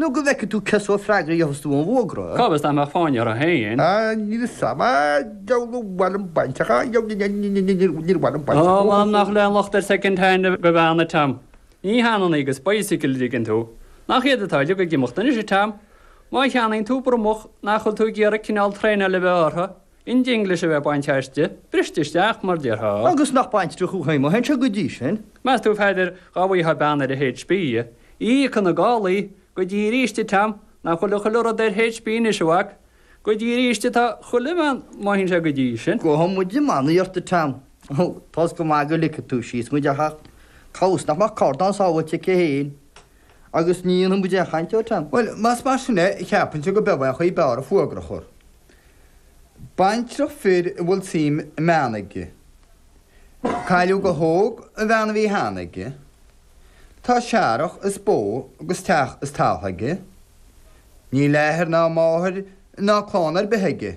Nó go bhfeice tú cén sórt freagraí a gheobhas tú ar an bhfógra. Cá bhfios nach mbeadh fáinne ortha fhéin. Á, níl 'fhios a'm. Á, deabhal ar mhaith liom baintreach. Á, deabhal, níor mhaith liom baintreach. Níor mhaith liom baintreach. Ó, mh'anam nach bhfuil aon locht ar second hand go bhean, a Tom. Ní hionann í agus bicycle an dtuigeann tú. Nach iad atá uilig ag imeacht anois, a Tom. Má cheannaíonn tú bromach nach bhfuil tú ag iarraidh cineál traenáil a bheith orthu? an dinglis a bheith bainte aisti, briste isteach mar déarfá. Agus nach baintreach thú fhéin má théann sé go dtí sin? Meas tú a Pheadair dhá bhfuightheá bean ar an H. P. íoc ina gálaí go dtí aríst a Tom nach bhfuil chuile rud ar H. P. anois a mhac, go dtí aríst atá chuile bhean má théann sé go dtí sin. Gabhfaidh muid i mbannaí ort a Tom tá 's go maith go ligfidh tú síos muid ach cá bhfios nach mbeadh carnán sábháilte aici fhéin. Agus ní dhéanfaidh muide aon chaint air, Tom. Bhuel, más mar sin é, cheapfainnse gob é an chaoi ab fhearr an fuagra a chur. Baintreach fir a bhfuil suim i mbean aige. Cailleadh go hóg an bhean a bhí cheana aige. Tá searrach is bó agus teach is taltha aige. Níl athair ná máthair ná clann ar bith aige.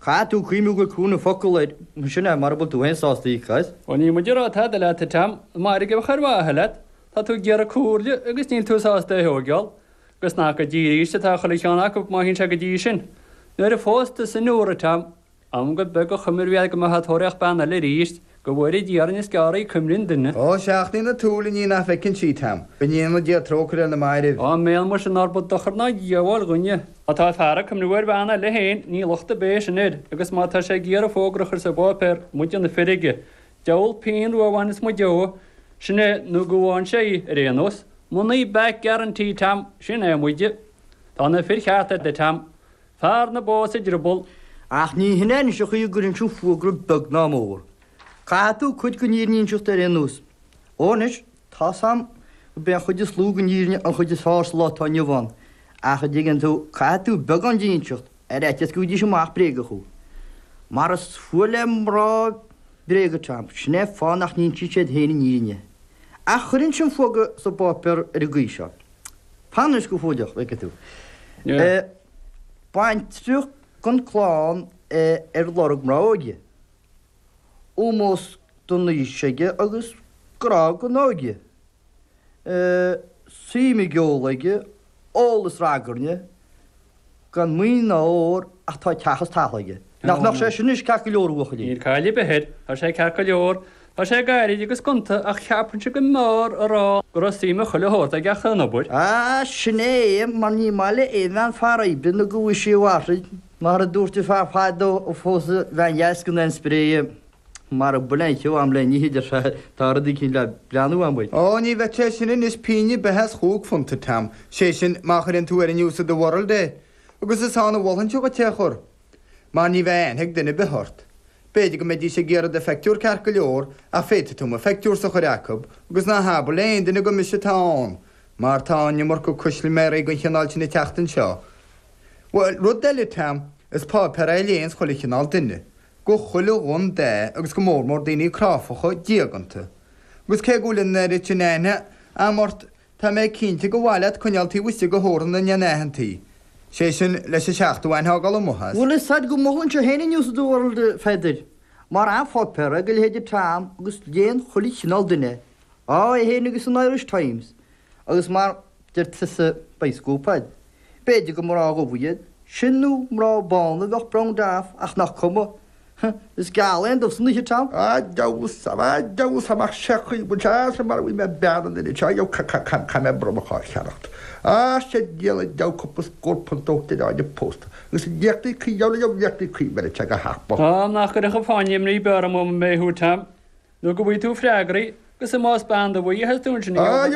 Caithfidh tú cuimhniú go cruinn an focal ar sin é mara bhfuil tú féin sásta í, caith. Ó níl muid ag rá tada leat a Tom, nach mairg a bheadh ar mhaithe leat, tá tú ag iarraidh comhairle agus níl tú sásta í a thóigeáil. Agus nach go dtí arís atá chuile cheann acu má théann sé go dtí sin. Nuair a phós tusa Nóra, Tom, m'anam gur beag an chuimhne a bhí a'd go mbeifeá ag tóraíocht bean eile arís. Go bhfóire Dia orainn is gearr í cuimhne an duine. Ó seachnaíonn an tsúil an ní nach bhfeiceann sí, a Tom, go ndéana Dia trócaire ar na mairbh. Áiméan muis nárba dochar ná díoghbháil dhúinn é. Má tá fear ag cuimniú ar bhean eile féin ní locht ar bith é sin air, agus má tá sé ag iarraidh fógra a chur sa bpáipéar muide na fir aige, diabhal pínn rua a bhainfeas muid dó, sin é nó go bhfaigheann sé í, ar aon nós. Money back guarantee, Tom, sin é muide. Tá na fir chearta a'd, a Tom. Fear na bó sa drioball. Ach ní hin é anois an chaoi a gcuirfinnse an fuagra beag ná mór. Caithfidh tú cuid den fhírinne inseacht ar aon nós. Ó anois, tá 's a'm gurb é an chuid is lú den fhírinne an chuid is fearr sa lá atá inniu ann, ach a' dtuigeann tú, caithfidh tú beagán di inseacht, ar fhaitíos go bhfaighidís amach bréaga thú. Mar is fuath le mná bréaga, Tom, sin é an fáth nach n-insíonn siad féin an fhírinne. Ach chuirfinnse an fuagra sa bpáipéar ar an gcaoi seo. Fan anois go fóilleach, go bhfeicfidh tú. Baintreach gan clann ar lorg mná óige. Ómós don aois aige agus grá don óige. Suim i gceol aige, ól is ragairne, gan maoin mhór ach tá teach is talamh aige. Nach mbeadh sé sin ceart go leor a bhuachaillí. Níl cailleadh ar bith air. Tá sé ceart go leor. Tá sé gairid agus gonta ach cheapfainnse go mb'fhearr a rá go raibh suim i chuile shórt aige ach an obair. Ach sin é é mar ní maith le aon bhean fear oibre nó go bhfuil sí i bhfadhb. Mar a dúirt an fear fadó a phós an bhean dheas gan aon spré. Mara bhfuil aon cheo a'm le n-ithe de seo tá rudaí cinn le breathnú amuigh. Ó ní bheadh sé sin anois pínn beith as chúig phunt, a Tom. Sé sin má chuireann tú ar an News of the World é agus is ann a mholfainnse dhuit é a chur. Mar ní bheidh aithne ag duine ar bith ort. B'fhéidir go mbeidís ag iarraidh do phictiúr ceart go leor ach féadfaidh tú mo phictiúrsa a chur acu agus ná habair le aon duine gur mise atá ann mar tá an iomarca custaiméirí dhon chineál sin ag teacht anseo. Bhuel rud eile Tom is páipéar é a léanns chuile chineál duine. go chuile dhun de agus go mórmór daoine cráifeacha diaganta, agus cé go bhfuil an oiread sin aithne a'am ort tá mé cinnte go mhaith leat coinneáil taobh istigh de theorann na ndeich n-aitheantaí, sé sin leis an seachtú aithne a fhágáil amuigh as. Bhuel, tá's a'd go molfainnse féin an news of the world, Pheadair, mar pháipéar do leithéidí Tom agus léann chuile chineál duine, á, é féin agus an Irish Times, agus mar. Deir tusa beidh scóip a'd. B'fhéidir gur mná dubha iad sin nó mná bána a bheadh brown dath ach nach cuma. Is geal é an dubh san oíche, Tom. A Deus, a Deus amach sea chaoi go bhfuil sé as a marbh í mé bean an oiread seo yo ca ca ca ca mé bronnadh dhá cheannacht. A sea díol a deabh cúpla scór punt ó d'fhear áineamh pósta. Agus an liachtaí cuí yo yo liachtaí cuí bheir te go hach bog. Á nach gcuirfeadh a fáinne imní beorach mé thú, Tom, nó go bhfaighidh tú freagraí, agus más bean dubh í a theastaíonn sin, yo.